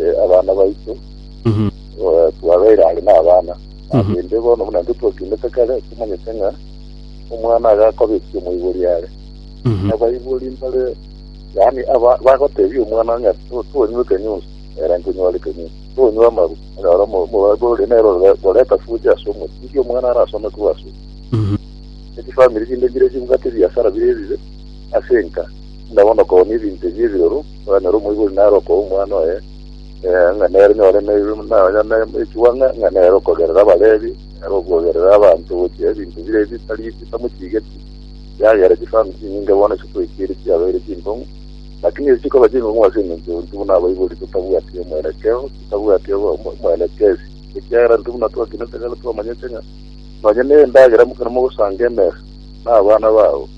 eh, abana baito Mhm. eh, twabeire are n'abana Mhm. rende bono buna intwe twakendete kare tomanyete ng'a omwana agakobetia omoibori are Mhm. abaibori mbare yaani aba- bagotebia omwana ng'a to- tonywe ekenyusi era nkonyware ekenyusi tonywe amaru onyora omoibori nero ore- oreta fuja ase omoti iga omwana arasome korwa ase Mhm. ekifamiri kinde mbire chibugate ebiasara bire ebibe ase enka buna bono kooni ebinto ebi ebiroro Okonyora omoibori nare okoa omwana oye, eh, ng'a nere nyore ne- na- onye ne- echugwa ng'a ng'a nere okogerera Abalevi, nere okogerera abanto gochia ebinto bire ebitari bitamochigeti, yagera chifamu chinyinge bono chitwekire chiabeire chinkong'u, lakini echi chikoba chinkong'u ase engencho intwe buna abaibori totabwati omwerekeo, totabwati obo- omo- omwerekezi, ekiagera intwe buna twakinete kare twamanyete ng'a nonye ne endagera mokero mogosanga emesa na abana babo,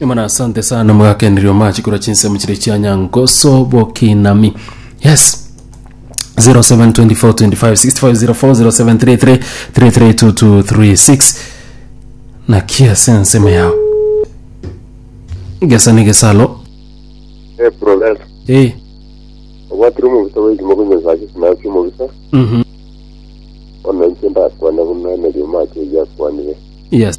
Imana asante sana mwagakeneria omache korwa chinsemo chire chia nyangoso bokinami yes 07242565040733332236 naki ase ensemo yao gesa ni gesalo Eh, Professor, eh obwatire omobisa bwaito mokonyosa ase sinasi omobisa mhm ona inche ndakwane buna emerio macho eyakwanire yes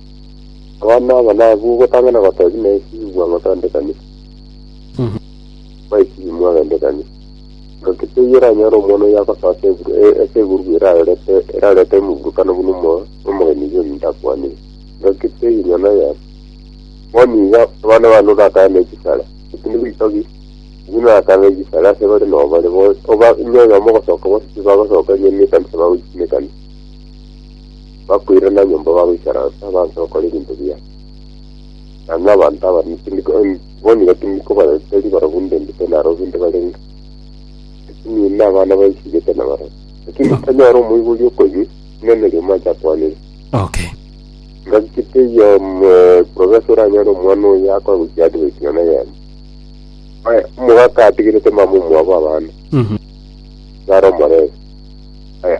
Abana aba nabwo gotang'ana gotogia naesi igwa ng'otondekanire. Mwaesi imwe agendekanire. Nonki teiyo oranyore omwana oyio agosoa ase eburu- e- ase egurugu erarorete erarorete omoburukano buna omo- omogeni iga ominto akwanire. Nonki teiyo nyene oyere. Bono iga abana bane orakare ne chisare, eki nigo itogi, eki norakare ne chisare ase bare nobare, bo- oba onye oyomo ogosoka bose tibagosoka erio nekanisa bagoichia nekanisa. bakoirana nyomba bagoikaransa banse gokora ebinto biya. Na nabanto aba tindiko- em, bonire tindiko bareteri barobwo ndendete narobwo inde barenge. Lakini inde abana baisigete na barobwo. Lakini No. tanyora omoibori okoyia, inene rioma acha akwanere. Okay. Ngaki kiteiyo profesa oranyore omwana oyo akora gochia advert na neyemo. Oye, omogaka atigerete mama omwabo abana. Mhm. Naro omorebe. Oye,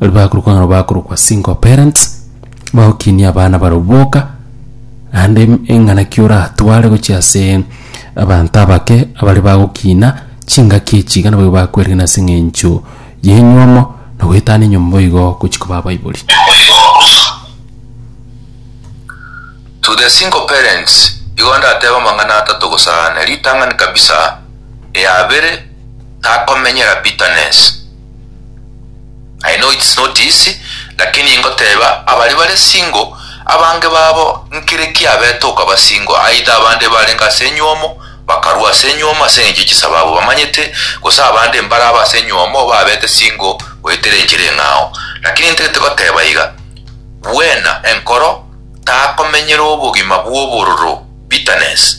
Baria bakorokwa ng'a bakorokwa single parents, bagokinia abana barabwo boka, naende em- eng'anaki oratware gochia ase abanto abake abare bagokina chingaki echi iga nabo bakwerena ase eng'encho y'enyomo na goetana enyomba igo gochia koba abaibori. To the single parents, igo ndatebe amang'ana atato gosa ane. Ritang'ani kabisa, ria abere, takomenyera bitterness. I know it's not easy, lakini ingoteba abari bare single abange babo nkire kiabete okaba single either abande barenge ase enyuomo bakarua ase enyuomo ase engencho chisababu bamanyete gose abande mbare aba ase enyuomo babete single goetera enchera eng'ao lakini ntagete goteba iga bwena enkoro takomenyera obogima bwobororo bitterness.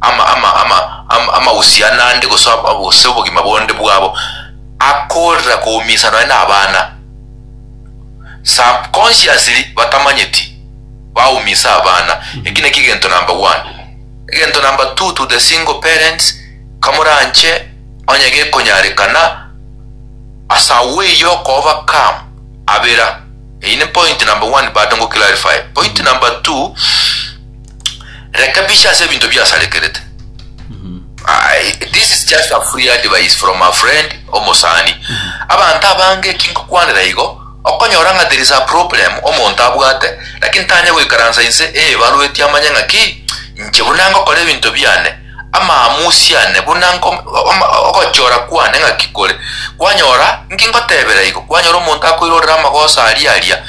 ama, ama, ama, ama, amausiano ande, gose ob- ob- gose obogima bonde bwabo, akoorera koumisana nonye nabana. Subconsciously batamanyeti baumisa abana. Eki nakio egento number one. Egento number two to the single parents, kamoranche onye gekonyarekana as a way yo ko overcome abera. Eyi ne point number one bado ngo clarify. Point number two, Reka biche ase ebinto biasarekerete. I, this is just a free advice from a friend omosani abanto abange ekingokwanera igo okonyora ng'a there is a problem omonto abwate lakini tanya goikaransa inse eebarueti amanye ng'a ki inche buna ngokora ebinto biane amaamusi ane buna nko ama- ogochora kwane ng'a ki kore kwanyora nki ngotebera igo kwanyora omonto akoirorera amagoso aria aria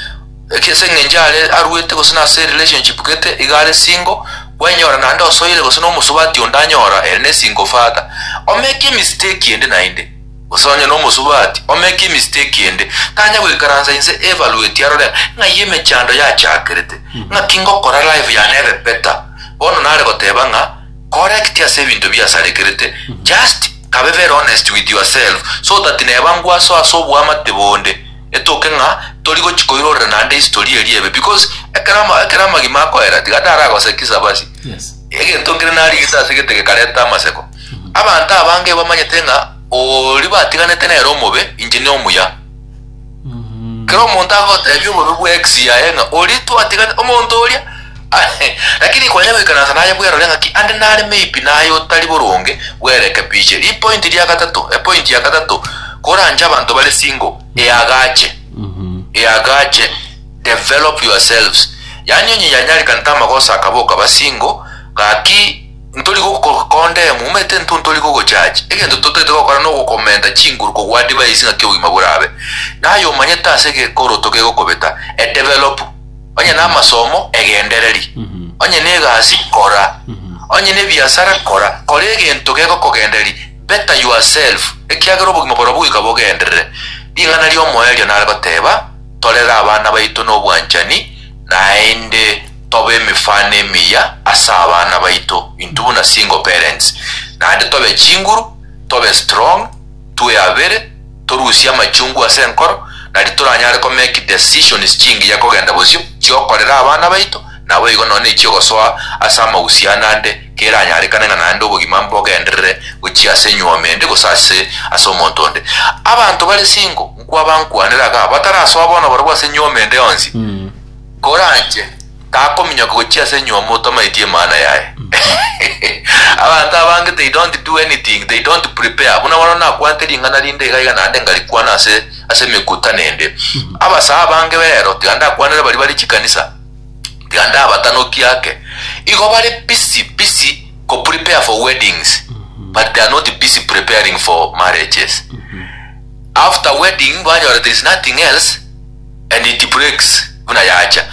Gaki ase engencho are aruete gose nase relationship gete iga are single, gwenyora naende osoire gose nomosubati onde anyora ere ne single father omeke emistake ende naende. Gose onye nomosubati omeke emistake ende tanya goikaransa inse evaluate arore ng'ai emechando yachakerete, ng'aki ngokora life yane ebe better. Bono nare goteba ng'a correct ase ebinto biasarekerete just kabe very honest with yourself so that neba ngwaso ase oboamate bonde. Etoke ng'a tori gochi koirorera naende history eria ebe because ekero ama ekero amagima akoera tiga taragosekisa basi Yes. egento nkere narigete ase egete gekareta amaseko abanto abange bamanyete ng'a oori batiganete nere omobe inche ne omuya Mhm. kero omonto agotebi obobe bwa ex yaye ng'a ori twatigane omonto oria Lakini kwanya goikaransa naye bwerore ng'aki ande nare maybe naye otari boronge bwerekebiche. Ripointi ria gatato, epointi ya gatato, koranche abanto bare single, eagache, eagache, develop yourselves. Yaani onye yanyarekana tamagoso akaba okaba single, gaki ntori gokokondemu, omanyete intwe ntori gogojaji, egento totaete gokora nogokomenta chinguru kogwa advice ng'aki obogima borabe. Naye omanyete ase gekoroto kegokobeta, edevelop. onye namasomo, egendereri, onye negasi, kora, onye nebiasara, kora, kora egento gegokogendereri, better yourself, ekiagera obogima borobwo goika bogenderere. Ring'ana ri'omoerio nare goteba, Torere abana baito nobwanchani, naende tobe emefano emiya ase abana baito, intwe buna single parents, naende tobe chinguru, tobe strong, twe abere, torusie amachungu ase enkoro, nari toranyare ko make decisions chingiya kogenda bosio, chiokorera abana baito, naboigo nonya nechiogosoa ase amahusiano ande, keranyarekane ng'a naende obogima mbogenderere gochia ase enyuomi ende gose ase ase omonto onde. Abanto bare single, nkwaba nkwanere iga, batarasoa bono barobwo ase enyuomi ende yonsi, koranche. Takominyoka gochia ase enyiomo otamanyeti emana yaye. Abanto abange they don't do anything, they don't prepare. Buna bono nakwanete ring'ana rinde iga iga naende ngarikwana ase ase emekutano ende. Abasaa abange b'eero tiga ndakwanere baria bare chikanisa, tiga ndabatanokie ake. Igo bare busy busy ko prepare for weddings but they are not busy preparing for marriages. After wedding banyora there is nothing else. and it breaks buna yacha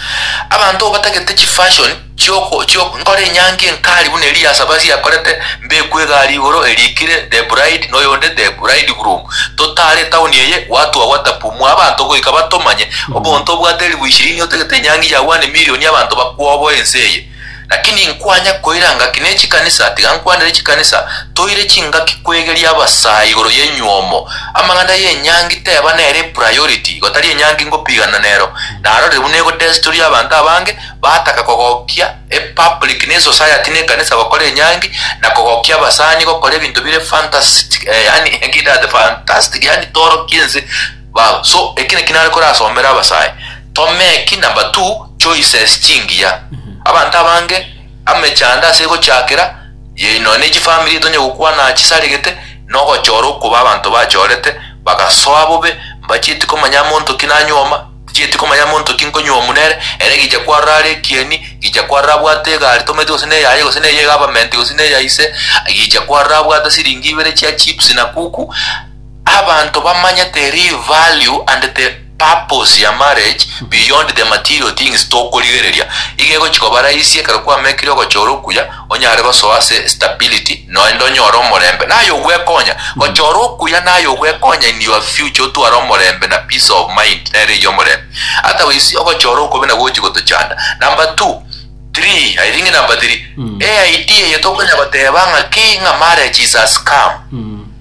abanto obatagete chi fashion chioko chioko nkore enyangi enkari buna eria ya sabasi yakorete mbekwe egari igoro erikire the bride noyonde the bride groom totare town eye watu awatapu mwa abanto goika batomanye obonto obwate elifu ishirini otagete enyangi ya one million abanto bakwoboe ense eye Lakini inkwanya koira ngaki ne chikanisa, tiga nkwanere chikanisa, toire chingaki kwegeria abasaa igoro y'enyuomo. Amang'ana y'enyangi teba nere priority, igo tari enyangi ngopigana nero. Narorire buna ego desturi y'abanto abange, bataka kogokia e public ne society ne ekanisa gokora enyangi, na kogokia abasani gokora ebinto bire fantastic, eh, yaani, ekidate fantastic, yaani toorokia ense. Bao, so eki naki nare korasomere abasae, Tomeki number two choices chingiya. Abanto abange amechando ase egochiakera ye nonya ne chifamiri tonye gokwana chisaregete na ogochora okoba abanto bachorete bagasoa bobe mbachieti komanya monto ki nanyuoma tichieti komanya monto ki nkonyuomu nere ere gicha kwarora are ekieni gicha kwarora abwate egari tometi gose ne eyaye gose ne eye government gose ne eya ise gicha kwarora abwate siringi ibere chia chips na kuku Abanto bamanyete real value and the purpose ya marriage beyond the material things tokorigereria, iga egochia koba rahisi ekero kwamekire ogochora okuya onyare gosoa ase stability noende onyore omorembe na aye ogwekonya. Gochora okuya na aye ogwekonya in your future otware omorembe na peace of mind nere eyio omorembe. Otherwise ogochora okobe nabo gochia gotochanda. Number two, three, I think number three, e idea eye tokonya goteba ng'a ki ng'a marriage is a scam.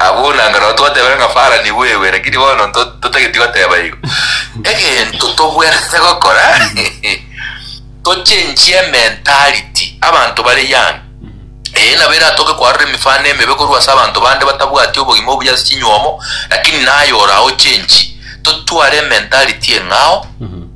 Abwo buna anga nao twatebire ng'a Fara nigo ewe, lakini bono nto- totageti goteba igo. Egento tobwenerete gokora, tochenchie ementality, abanto bare young. Eye nabo eratoke koarora emefano emebe korwa ase abanto bande batabwati obogima obuya ase chinywomo, lakini naye orao ochenchie. Totware ementality eng'ao,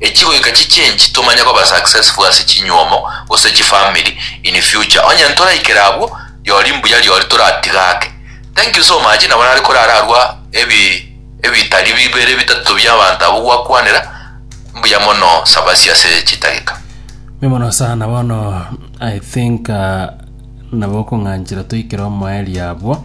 Echigoika chichenchi tomanye koba successful ase chinyuomo gose chifamiri in future onye ntoraikera abwo riori mbuya riori toratiga ake thank you so much nabo nare korara arwa ebi ebitari bibere bitato bia abanto abwo gwakwanera mbuya mono sabasi ase chitageka. Mbuya mono sana bono i think ah, nabo okong'anchera toikere omoerio abwo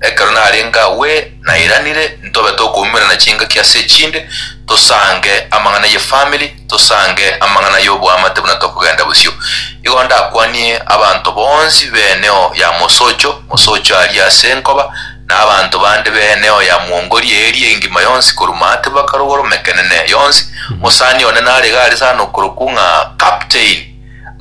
Ekero narenge agwo nairanire ntobe tokoumerana chingaki ase echinde, tosange amang'ana y'efamiri, tosange amang'ana y'oboamate buna tokogenda bosio. Igo ndakwanie abanto bonsi b'eneo ya mosocho, mosocho aria ase nkoba, na abanto bande b'eneo ya mwongoria eria engima yonsi korwa maate mpaka rogoro, mekenene yonsi. Mosani one narege are sana okorokwa ng'a Captain.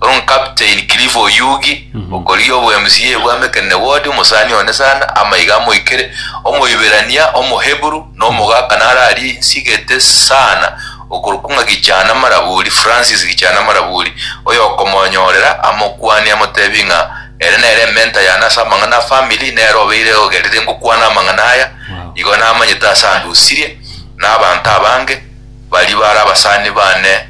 Onkapteini Cliff Oyugi, okorigia obo MCA bwa Mekene Ward, omosani one sana, amaiga amoikere, Omoiberania, Omoheburu, na omogaka naro aria insigete sana okorokwa ng'a Gichana Maraburi, Francis Gichana Maraburi, oyokomonyorera, amokwanie, amotebie ng'a ere nere ementa yane ase amang'ana a family, nere obeire ogerire ngokwana amang'ana aya, igo namanyete ase andusirie, na abanto abange baria bare abasani bane.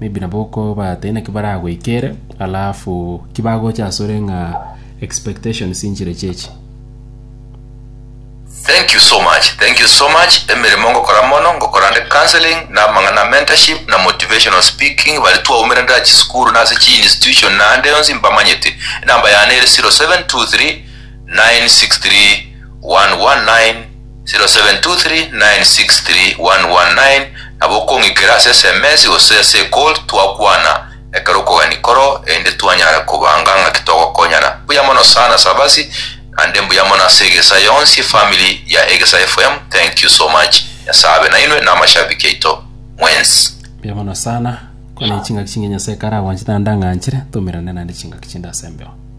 maybe nabo okoba tai naki baragoikere alafu ki bagocha asore ng'a expectations inchire chechi. Thank you so much thank you so much emeremo ngokora mono ngokora nde counseling na amang'ana mentorship na motivational speaking bare twaumire nda chisukuru na ase chi institution na ande yonsi mbamanyete enamba yane ere 0723 963 119 0723963119 nabo okong'ikera ase sms gose ase ecall twakwana ekero okogani koro erinde twanyare kobanga ng'aki togokonyana. Mbuya mono sana Sabasi naende mbuya mono ase egesa yonsi efamily ya Egesa FM thank you so much Nyasaye abe nainwe na amashabiki aito mwensi. Mbuya mono sana, kore chingaki chingiya Nyasae kare agwanchete naende ang'anchire, tomerane naende chingaki chinde ase embeo.